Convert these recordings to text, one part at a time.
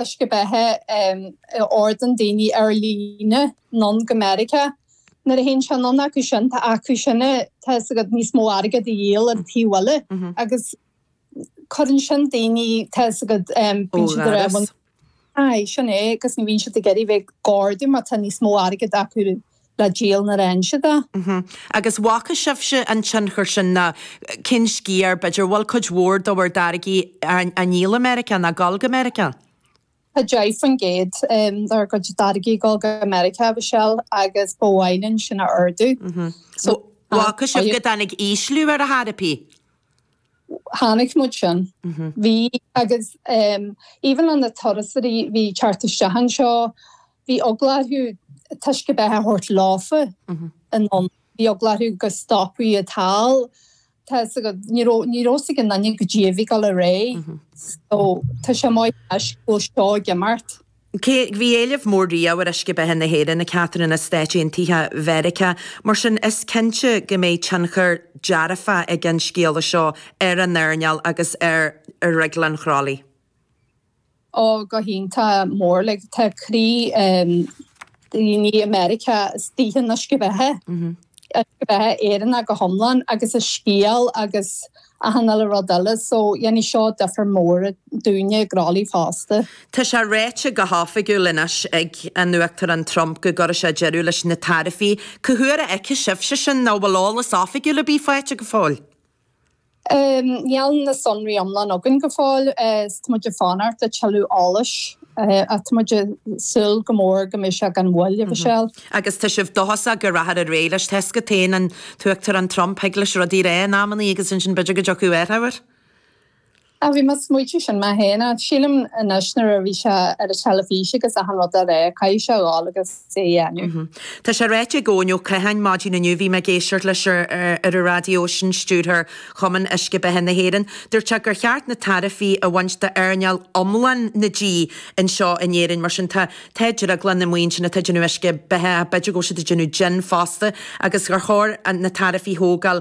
uisce beatha a ordaíonn daoine ar líne anonn go Meiriceá. Nuair a théann sé anonn acu sin tá acu sin é, tá fhios agat níos mó airgead a dhíol ar an taobh eile agus cuireann sin daoine, tá fhios agat, bíonn siad ar aon. Ó dhoras. Aye, sin é, agus ní bhíonn siad ag iarraidh bheith ag ordú mar tá níos mó airgid acu. le díol na ráinse do. Agus bhfaca sibhse an tionchar sin ná cén sciar, b'fhéidir bhfuil cuid mhór do bhur dtáirgí á ndíol i Meiriceá ná gul go Meiriceá? Tá 10 faoin gcéad dár gcuid táirgí gul go Meiriceá, a Mhichelle, agus ba mhaith linn sin a ardú. Bhfaca sibh go dtáinig ísliú air dá thairbhe? chonaic muid sin. Bhí, agus even an na turasóirí a bhí ag teacht isteach anseo, bhí eagla orthu uisce beatha a thabhairt leofa anonn, bhí eagla orthu go stopfaí iad thall, tá 'fhios agat, ní raibh, ní raibh 'fhios ag aon duine goidé a bhí ag dul ar aghaidh so tá sé maith toisc go bhfuil seo ag imeacht. Cé go bhí éileamh mór riamh ar uisce beatha na hÉireann go háithrid sna Stáit Aontaithe Mheiriceá, mar sin is cinnte go mbeidh tionchar dearfa ag an scéala seo ar an earnáil agus ar Dhrioglann Chroithlí. Ó, go hiontach, mór like. Tá croí daoine i Meiriceá istigh in uisce beatha. Ceist ar bith Éireannach go hiomlán agus a scéal agus achan uile rud eile so dhéanfaidh seo difear mór dúinne i gCroithlí fosta. Tá sé ráite go hoifigiúil anois ag an Uachtarán Trump go gcuirfidh sé deireadh leis na taraifí. Cá huair a fheicfidh sibhse sin? Ná bhfuil eolas oifigiúil ar bith faighte go fóill? Níl na sonraí iomlán againn go fóill is tá muid ag fanacht le tuilleadh eolais ach tá muid ag súil go mór go mbeidh sé gan mhoill, a Mhichelle. Agus tá sibh dóchasach go rachthar ar aghaidh leis tá fhios agat féin an tUachtarán Trump thig leis rudaí a rá in amannaí agus ansin b'fhéidir go dtiocfaidh athrú air? Á, bhí mé ag smaoitiú sin mé féin. Á, sílim anois nuair a bhí sé ar an teilifís agus achan rud dá réir, caithfidh sé a dhul agus é a dhéanamh. Tá sé ráite ag Eoin Ó Catháin maidin inniu, bhí mé ag éisteacht leis ar an raidió, sin stiúrthóir Chumann Uisce Beatha na hÉireann, dúirt sé gur cheart na taraifí a bhaint d'earnáil iomlán na dí anseo in Éirinn. Mar sin, tá drioglanna amuigh ansin atá ag déanamh uisce beatha ach b'fhéidir go bhfuil siad ag déanamh jin fosta agus gur chóir na taraifí thógáil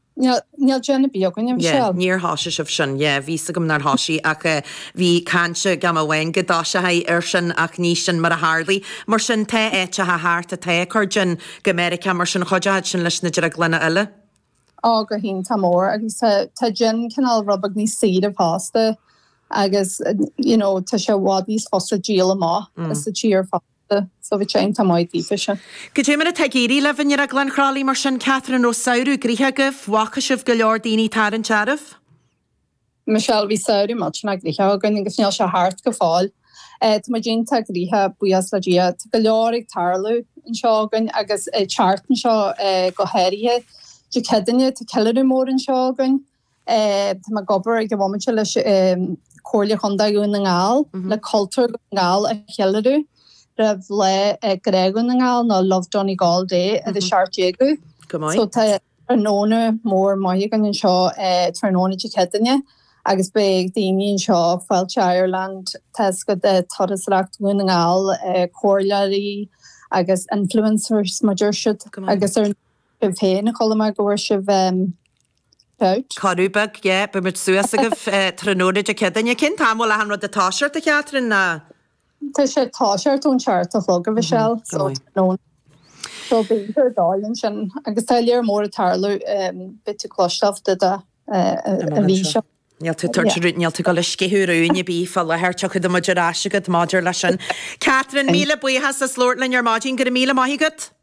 Níl jin ar bith againn, a Mhichelle. Yeah, níor thoisigh sibh sin. Yeah, bhí fhios agam nár thoisigh ach eh bhí caint ag am amháin go dtoiseofaí ar sin ach ní sin mar a tharlaigh. Mar sin tá áiteacha thart atá ag cur jin go Meiriceá mar sin chuideochadh sin leis na drioglanna eile. Á, go hiontach mór agus tá jin cineál rud beag níos saoire fosta agus you know tá sé i bhfad níos fusa díol amach sa tír fosta. Tá Soviet Sinn Tá Maigh Eo Fise. Goidé mar atá ag éirí libh i nDrioglann Chroithlí mar sin Catherine raibh samhradh gnoitheach agaibh, bhfaca sibh go leor daoine tarraingt oraibh? Michelle Bhí samhradh millteanach gnoitheach againn agus níl sé thart go fóill. Tá muid iontach gnoitheach buíochas le Dia. Tá go leor ag tarlú anseo againn agus an tseachtain seo go háirithe. Dé Céadaoine tá ceiliúradh mór anseo againn. Tá mé ag obair ag an bhomaite leis Comhairle Chondae Dhún na nGall le cultúr Dhún na nGall a cheiliúradh roimh Lá Grá Dhún na nGall nó Love Donegal Day ar an 17ú. So tá tráthnóna mór maith againn anseo tráthnóna Dé Céadaoine agus beidh daoine anseo, Fáilte Ireland, Taisce de Turasóireacht Dhún na nGall, Comhairleoirí agus influencers, mar a deir siad, agus ar sibh féin chuala mé go bhfuair sibh babhta. Cuireadh beag, yeah. Beidh muid suas agaibh tráthnóna Dé Céadaoine. Cén t-am a bhfuil achan rud ag toiseacht, a Chatherine, ná? Tá sé ag toiseacht ón seacht a chlog, a Mhichelle, so tráthnóna. So beidh muid ar dóigh ansin. Agus tá lear mór ag tarlú, beidh tú cloisteáil de do a bhí seo. Níl tú tabhairt rud, níl tú ag gabháil a sceitheadh ar rún ar bith fá láthair, tiocfaidh muid ar ais agat maidir leis sin. Catherine, míle buíochas as labhairt linn ar maidin, go raibh míle maith agat.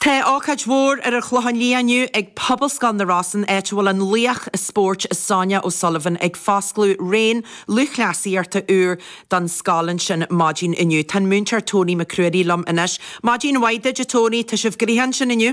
Tá ócáid mhór ar an Chlochán Liath inniu ag Pobalscoil na Rosann áit a bhfuil an laoch spóirt Sonia O'Sullivan ag foscladh raon lúthchleasaíochta úr don scoil ansin maidin inniu. Tá an múinteoir Tony McCreary liom anois. Maidin mhaith duit a Tony, tá sibh gnoitheach ansin inniu?